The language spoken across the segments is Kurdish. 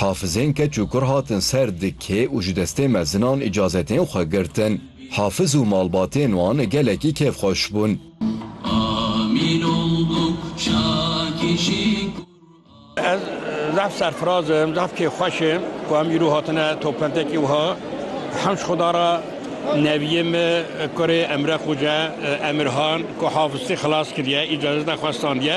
Hafizên keç û kur hatin ser di kê û ji destê mezinan îcazetên xwe girtin. Hafiz û malbatên wan gelekî kêfxweş bûn. Ez zaf serfiraz im, zaf kêfxweş im ku em îro hatine topbentekî wiha. Hemş xuda re neviyê me kurê Emre Xoca Emirhan ku hafiztî xilas kiriye, îcazeta xwe standiye.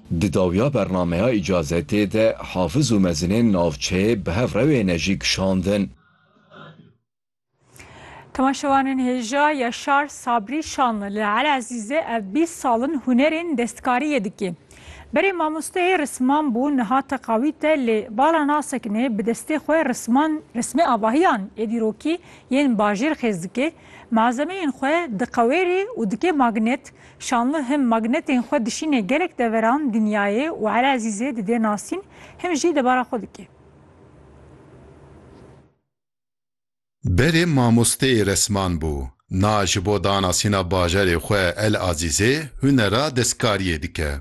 Di dawiya bernameya îcazetê de Hafiz û mezinên navçeyê bi hev rewêne jî kişandin. Temaşevanên hêja Yaşar Sabri Şanlı li Elezîzê ev bîst sal in hunerên destkariyê dike. Berê mamosteyê risman bû niha teqawît e lê bala nasekine bi destê xwe risman rismê avahiyan ê dîrokî yên bajêr xêz dike, malzemeyên xwe diqewêrê û dike magnet Şanlı him magnetên xwe dişînê gelek deveran, dinyayê û Eli Ezîzê didê nasîn, him jî debara xwe dikê. Berê mamosteyê resman bû. Na ji bo danasîna bajarê xwe El Azîzê hunera destkariyê dike.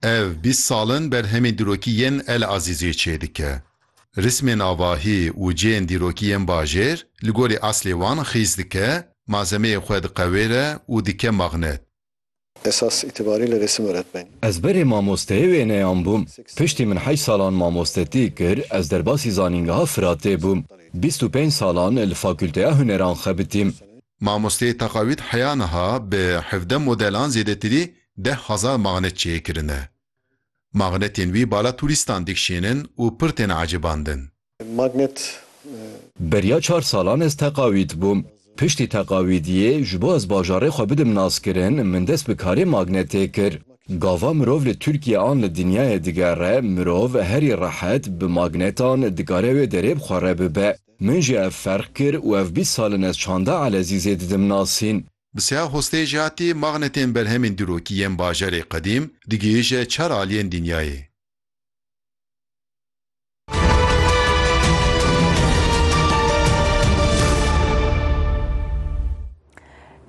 Ev bîst sal in berhemên dîrokî yên El Azîziyê çêdike. Rismên avahî û cihên dîrokî yên bajêr li gorî eslê wan xîz dike, malzemeyê xwe diqewêre û dike magnet. Esas îtibarî li rêsim öretmenî. Ez berê mamosteyê wêneyan bûm. Piştî min heşt salan mamostetî kir, ez derbasî zanîngeha Firatê bûm. Bîst û pênc salan li Fakulteya Huneran xebitîm. Mamosteyê Teqawît heya niha bi hevdeh modelan zêdetirî deh hezar magnet çê kirine. Magnetên wî bala turîstan dikşînin û pir têne ecêbandin. Magnet. Beriya çar salan ez Teqawît bûm. Piştî Teqawîdiyê ji bo ez bajarê xwe bidim naskirin min dest bi karê magnetê kir. Gava mirov li Tirkiye an li dinyayê digere, mirov herî rehet bi magnetan dikare wê derê bi xwe re bibe. Min jî ev ferq kir û ev bîst sal in ez çanda Elezîzê didim nasîn. Bi seha xwestê jî hatî magnetên berhemên dîrokî yên bajarê qedîm digihîje çar aliyên dinyayê.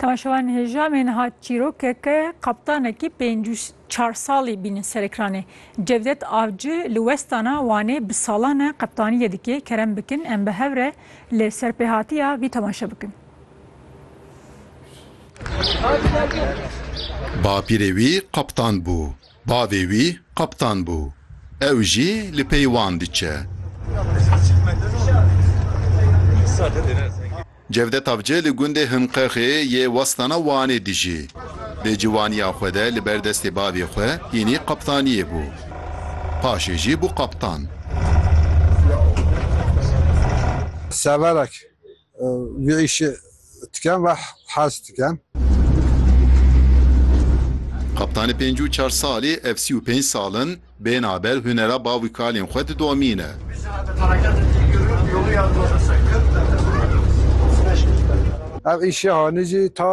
Temaşevan Hêjamên hat çîrokeke qaptanekî pêncî û çar salî bînin ser ekranê. Cevdet Avci li westana Wanê bi salan e qeptaniyê dike, kerem bikin em bi hev re li serpêhatiya vî temaşe bikin. Bapîrê wî qeptan bû, bavê wî qeptan bû, ew jî li pey wan diçe. Cevdet Avcı li gundê Himqexê yê Westana Wanê dijî. Di ciwaniya xwe de li ber destê bavê xwe hînî qeptaniyê bû. Paşê jî bû qeptan. Severek vî îşê dikin ve hez dikin. Qeptanê pêncû çar salî ev sî û pênc sal in, Bêhna ber hunera bav û kalên xwe didomîne. Ev îşê hanî jî ta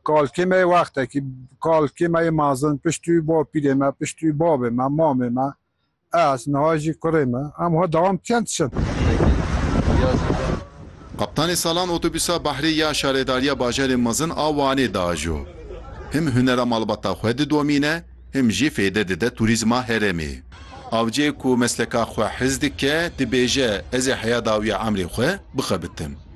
kalkê me yê wextekî, kalkê me yê mezin, piştî wî bapîrê me, piştî wî bavê me, mamê me, ez, niha jî kurê me, em wiha dewam dikin diçin. Kaptanê salan otobûsa Behrê ya Şaredariya Bajarê Mezin a Wanê diajo. Him hunera malbata xwe didomîne, Him jî fêde dide turîzma herêmê. Avciyê ku mesleka xwe hez dike dibêje, Ez ê heya dawîya emrê xwe bixebitim.